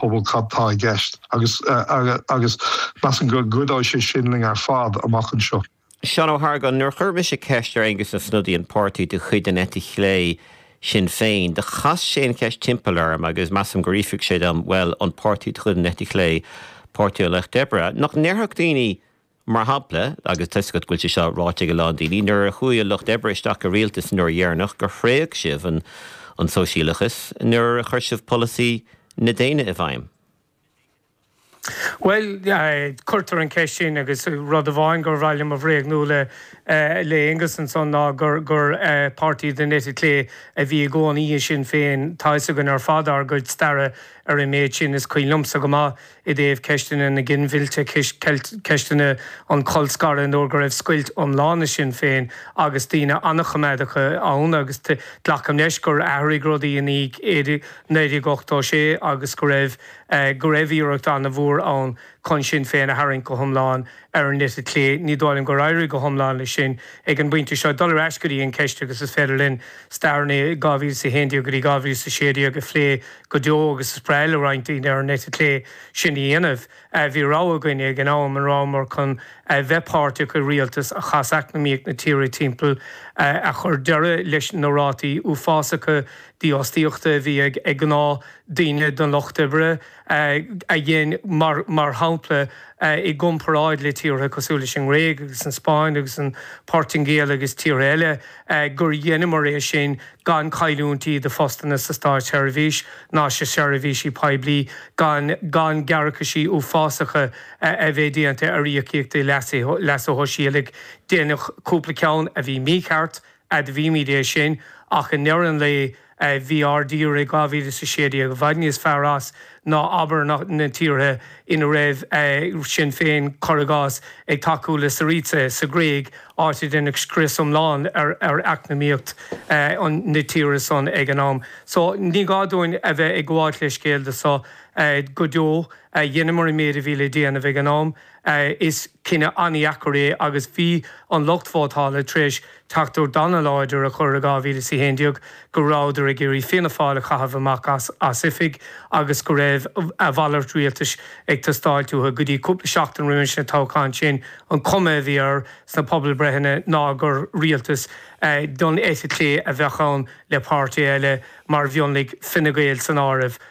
phobal cad tá i gceist agus agus measaim go gcuideodh sé sin linn ar fad amach anseo. Seán Ó hArgáin, Nuair a chuir mise ceist ar Aengus Ó Snodaigh, an páirtí de chuid an eite chlé, Sinn Féin, do chas sé an cheist timpeall orm agus measaim gur fhiafraigh sé díom, bhuel, an páirtí de chuid an eite chlé, Páirtí an Lucht Oibre, nach ndéarfadh daoine, Mar shampla, agus toisc go bhfuil sé seo ráite ag a lán daoine, nuair a chuaigh an Lucht Oibre isteach i rialtas an uair dheireanach gur thréig sibh an sóisialachas nuair a chuir sibh polasaí na déine i bhfeidhm. Bhuel, cuirtear an cheist sin agus rud amháin gur mhaith liom a bhréagnú le Aengus ansan ná gur páirtí den eite chlé a bhí i gcónaí i Sinn Féin. Tá 'fhios againn ar fad ár gcuid staire ar an méid sin, is cuimhin liomsa go maith, i dtaobh ceisteanna na ginmhillte, ceisteanna an cholscartha, nuair go raibh scoilt iomlán i Sinn Féin agus daoine an-choimeádacha ann agus glacaim leis gur athraigh rudaí i ndiaidh 1986 agus go raibh go raibh iarracht an-mhór ann chun Sinn Féin a tharraingt go hiomlán ar an eite chlé. Ní dóigh liom gur éirigh go hiomlán leis sin ag an bpointe seo. Dul ar ais go dtí an ceist agus is féidir linn stair 2011 go dtí 2016 a phlé go deo agus is breá le roinnt daoine ar an eite chlé sin a dhéanamh. Bhí rogha againne ag an am, an rabhamar chun a bheith páirteach i rialtas a chas eacnamaíocht na tíre timpeall, a chuir deireadh leis na rátaí uafásacha dífhostaíochta a bhí ag gnáth daoine den lucht oibre, a dhein, mar shampla, i gcomparáid le tíortha cosúil leis an nGréig agus an Spáinn agus an Poirtingéal agus tíortha eile, gur dheineamar é sin gan cailliúintí de phostanna sa Státsheirbhís ná sna seirbhísí poiblí, gan gan gearrcaisí uafásacha a bheith déanta ar íocaíochtaí leasa shóisialaigh. Deineadh cúpla ceann a bhí mícheart, admhaímid é sin, ach i ndeireadh an lae, bhí ár dtír i 2016, i bhfad níos fearr as ná, abair, na tíortha ina raibh Sinn Féin, cuir i gcás, ag tacú le Syriza sa Ghréig, áit a deineadh scrios iomlán ar eacnamaíocht na tíre san ag an am. So, ní gá dúinn a bheith ag gabháilt leithscéal de seo go deo. Dheineamar an méid a bhí le déanamh ag an am. Is cinneadh an-dheacair é agus bhí an lucht vótála tar éis teachtaireacht ana-láidir a chur i 2011 go rabhadar ag iarraidh Fianna Fáil a chaitheamh amach as oifig agus go raibh a mhalairt rialtais ag teastáilt uathu. Go dtí cúpla seachtain roimis an toghchán sin an chuma a bhí air sna pobalbhreitheanna ná gur rialtas den eite chlé a bheadh ann le páirtithe eile mar mhionlaigh, Fine Gael san áireamh.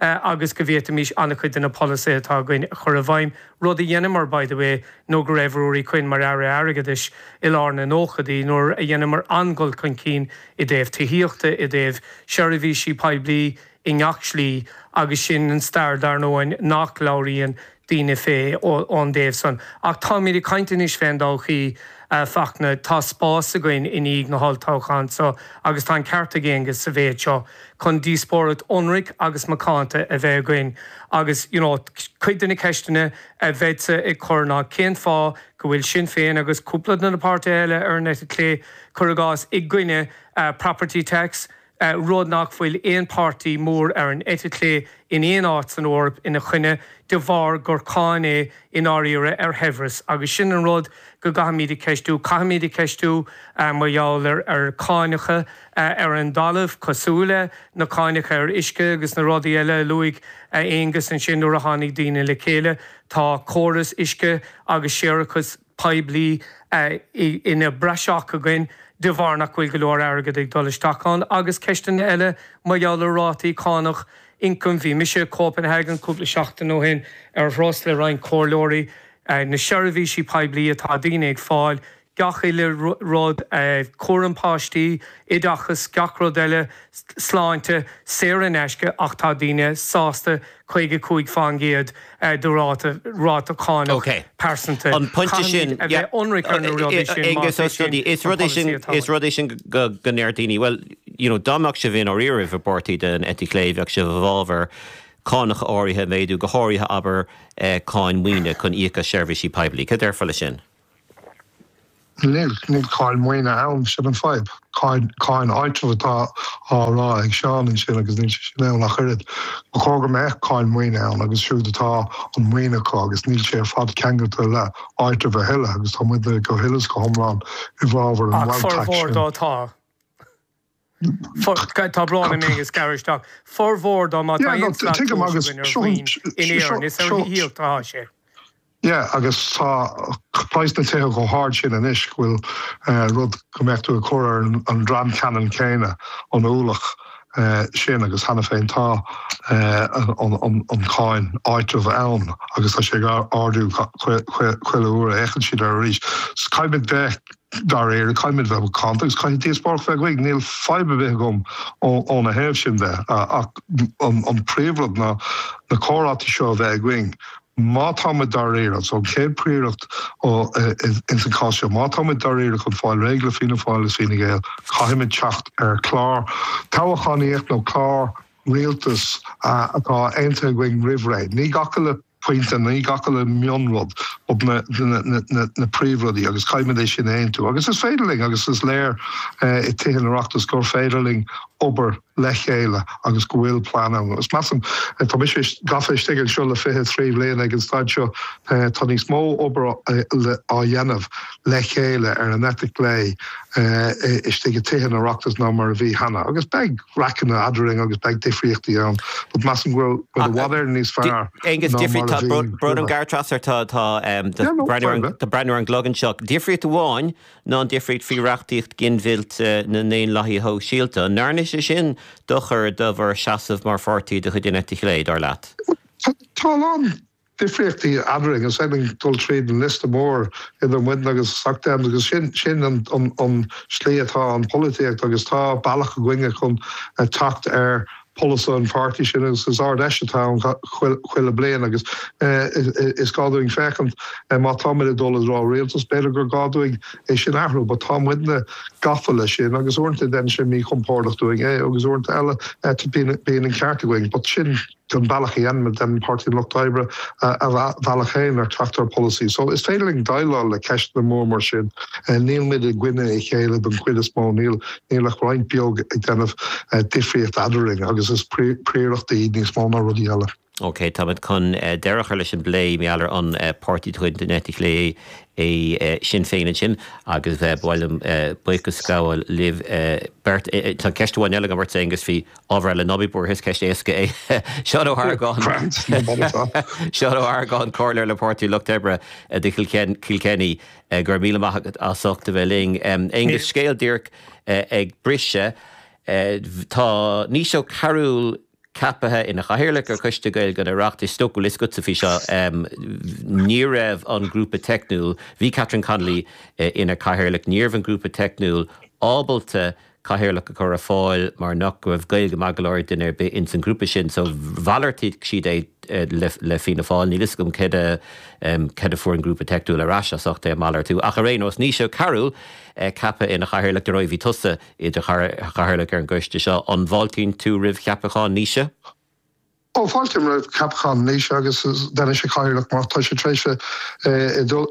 agus go bhféadfaimis an-chuid de na polasaithe atá againn a chur i bhfeidhm, rud a dheineamar, by the way, nuair go raibh Ruairí Quinn mar Aire Airgeadais i lár na nóchaidí, nuair a dheineamar an-dhul chun cinn i dtaobh tithíochta, i dtaobh seirbhísí poiblí, i ngach slí, agus sin an stair, dar ndóigh, nach labhraíonn daoine fé ón dtaobh san. Ach táimíd ag caint anois fén dtodhchaí, a Fachtna. Tá spás againn i ndiaidh na holltoghchán so, agus tá an ceart ag Aengus sa mhéid seo, chun díospóireacht ionraic agus macánta a bheith againn. Agus, you know, cuid de na ceisteanna a bheinnse ag cur ná, cén fáth go bhfuil Sinn Féin agus cúpla de na páirtithe eile ar an eite chlé, cuir i gcás, i gcoinne property tax? rud nach bhfuil aon páirtí mór ar an eite chlé in aon áit san Eoraip ina choinne, de bharr gur cáin é i ndáiríre ar shaibhreas. Agus sin an rud go gcaithfimid a cheistiú. Caithfimid a cheistiú mar gheall ar cháineacha ar an dtalamh, cosúil le na cáineacha ar uisce agus na rudaí eile a luaigh Aonghus ansin, nuair a tháinig daoine le chéile. Tá córas uisce agus séarachas. poiblí ina bpraiseach againn de bharr nach bhfuil go leor airgead ag dul isteach ann agus ceisteanna eile mar gheall ar rátaí cánach ioncaim. Bhí mise i gCopenhagen cúpla seachtain ó shin ar thuras le roinnt comhairleoirí. Na seirbhísí poiblí atá daoine ag fáil, gach uile rud, cúram páistí, oideachas, gach rud eile, sláinte, saor in aisce ach tá daoine sásta 55% de ráta ráta cánach pearsanta. Caithfimid a bheith ionraic ar na rudaí sin más é sin an polasaí atá ann. Is rud é sin go ndeir daoine, bhuel, you know, dá mbeadh sibh i ndáiríre, i bpáirtí den eite chlé, bheadh sibh i bhfabhar cánach áirithe a mhéadú, go háirithe abair cáin maoine chun íoc as seirbhísí poiblí. Cad a déarfá leis sin? Níl, níl cáin mhaoine ann, sin an fadhb. Cáin, cáin áitribh atá á rá ag Seán ansin agus níl sé sin ann ach oiread. Ba chóir go mbeadh cáin mhaoine ann acu siúd atá an maoin acu agus níl sé ar fad ceangailte le áitreabh a thuilleadh agus tá muidne go huile is go hiomlán i bhfabhar an Ach bhail tax formhór sin. dá atá. Tá brón orm a Aonghus, gearradh isteach formhór de, má tá aon slat tomhais againn ar mhaoin in Éirinn, is ar thithíocht atá sé. Yeah agus tá praghas na tithe chomh hard sin anois go bhfuil rud go mbeadh tú ag cur ar an dream ceannann céanna an ualach sin agus cheana féin tá an cáin áitreabh ann agus tá sé ag ardú chuile uair a fhéachann siad air arís. Caithfidh muid bheith Dá réir, caithfidh muid bheith macánta agus caithfidh díospóireacht bheith againn. Níl fadhb ar bith agam óna thaobh sin de ach an príomhrud ná na comhráite seo a bheith againn. Má tá muid dáiríre, so an chéad prioracht ins an cás seo, má tá muid dáiríre chun fáil réidh le Fianna Fáil is Fine Gael, caithfidh muid teacht ar chlár toghachánaíocht nó clár rialtas atá aontaithe againn roimh ré. Ní gach uile pointe i, gach uile mhionrud, but na príomhrudaí, agus caithfimid é sin a aontú. Agus is féidir linn, agus is léir i Tithe an Oireachtais gur féidir linn obair le chéile agus go bhfuil plean ann. Agus measaim, tá mise gafa istigh anseo le fiche trí bhliain ag an staid seo, tá níos mó obair á dhéanamh le chéile ar an eite chlé istigh i Tithe an Oireachtais ná mar a bhí cheana, agus beidh. raiceanna eadrainn agus beidh difríochtaí ann, but measaim go raibh muid i bhfad ar níos fearr ná mar a bhí roimhe. Yeah, no, fair enough. Tá mé ag breathnú ar an gclog anseo. Difríocht amháin ná an difríocht faoi reachtaíocht ginmhillt na nDaonlathaí Sóisialta. An ndearna sé sin dochar do bhur seasamh mar pháirtí de chuid an Eite Chlé, dar leat? Tá a lán difríochtaí eadrainn. Is féidir linn dul tríd an liosta mór idir muidne agus Soc Dems agus sin an slí atá an pholaitíocht agus tá bealach againne chun teacht ar pholasaithe an pháirtí sin agus is Ard Fheis atá ann chuile bliain agus is gá dúinn féachaint má tá muid ag dul i dtreo rialtas b'fhéidir gur gá dúinn é sin athrú but tá muidne gafa le sin agus uaireanta déanann sé míchompordach dúinn é agus uaireanta eile bíonn an ceart againn but sin an bealach a déanann Páirtí an Lucht Oibre a bhealach féin ar teacht ar polasaí. So is féidir linn déileáil le ceisteanna mór mar sin. Níl muid i gcoinne a chéile don chuid is mó, níl níl ach roinnt beag ag déanamh difríocht eadrainn agus is priorachtaí níos mó ná rudaí eile. Ok, táimid chun deireadh a chur leis an bplé maidir le an páirtí de chuid den eite chlé é Sinn Féin ansin agus ba mhaith liom buíochas a ghabháil libh beirt. Tá ceist amháin eile agam ort Aengus, bhí ábhar eile, ná bí buartha, is ceist éasca é. Seán Ó hArgáin, Seán Ó hArgáin, Comhairleoir le Páirtí Lucht Oibre do Chill Chainnigh, go raibh míle maith agat as ucht a bheith linn. Aengus, Scéal díreach ag briseadh. Tá Naoise Ó Cearúil ceapaithe ina Chathaoirleach ar Choiste Gaeilge an Oireachtais. Is dócha go bhfuil 'fhios agatsa faoi seo, ní raibh an grúpa teicniúil, bhí Catherine Connolly ina Cathaoirleach, ní raibh an grúpa teicniúil ábalta cathaoirleach a chur ar fáil mar nach raibh Gaeilge a dhóthain go leor ag duine ar bith ins an ghrúpa sin so mhalartaigh siad é le Fianna Fáil. Níl 'fhios agam céard a céard a fuair an grúpa teicniúil ar ais as ucht é a malartú ach ar aon nós Naoise Ó Cearúil ceaptha ina chathaoirleach. Ar ndóigh bhí tusa i do chathaoirleach ar an gcoiste seo, an bhfáiltíonn tú roimh cheapachán Naoise? Ó fáiltím roimh cheapachán Naoise agus déanfaidh sé cathaoirleach maith, tá sé tar éis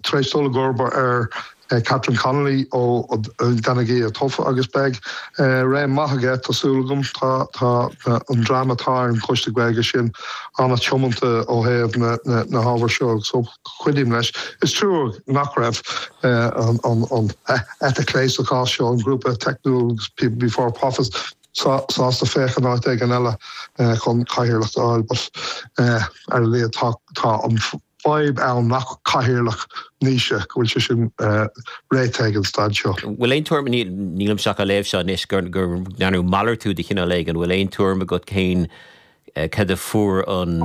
tar éis dul i gcomharba ar Catherine Connolly ón Dáil atá tofa agus beidh réim maith aige tá súil agam. Tá an dream atá ar an Choiste Gaeilge sin an-tiomanta ó thaobh na hábhair seo agus cuideoimid leis. Is trua nach raibh an eite chlé sa chás seo, an grúpa teicniúil People Before Profit. sásta féachaint áit éigin eile chun cathaoirleacht a fháil, but ar a laghad tá an fhadhb ann nach cathaoirleach, Naoise, go bhfuil sé sin réitithe ag an staid seo. Bhfuil aon tuairim, nílimse ach á léamh seo anois, gur ndearnadh malartú de chineál éigin, bhfuil aon tuairim agat cén, cad a fuair an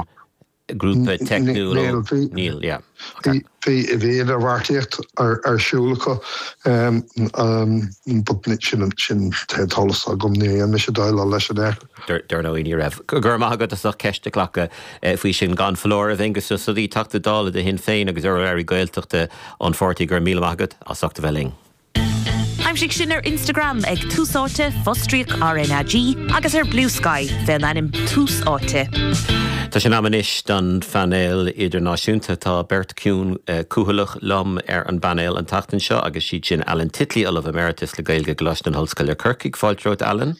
grúpa teicniúil ó Níl, yeah. Bhí idirbheartaíocht ar siúl acu but níl an t-eolas agam, ní raibh mise ag déileáil leis an ábhar. Dar ndóigh ní raibh. Go raibh maith agat as ucht ceist a ghlacadh faoi sin. Gan foláireamh, Aengus Ó Snodaigh, Teachta Dála do Shinn Féin agus urlabhraí Gaeltachta an pháirtí, go raibh míle maith agat as ucht a bheith linn. Aimsigh sinn ar Instagram ag Tús Áite, fostríoc RnaG, agus ar Bluesky fén ainm Tús Áite. Tá sé in am anois don phainéal idirnáisiúnta. Tá beirt chiúin chúthaileach liom ar an bpainéal an tseachtain seo agus siad sin Alan Titley, Ollamh Emeritus le Gaeilge i gColáiste na hOllscoile, Corcaigh. Fáilte romhat, Alan.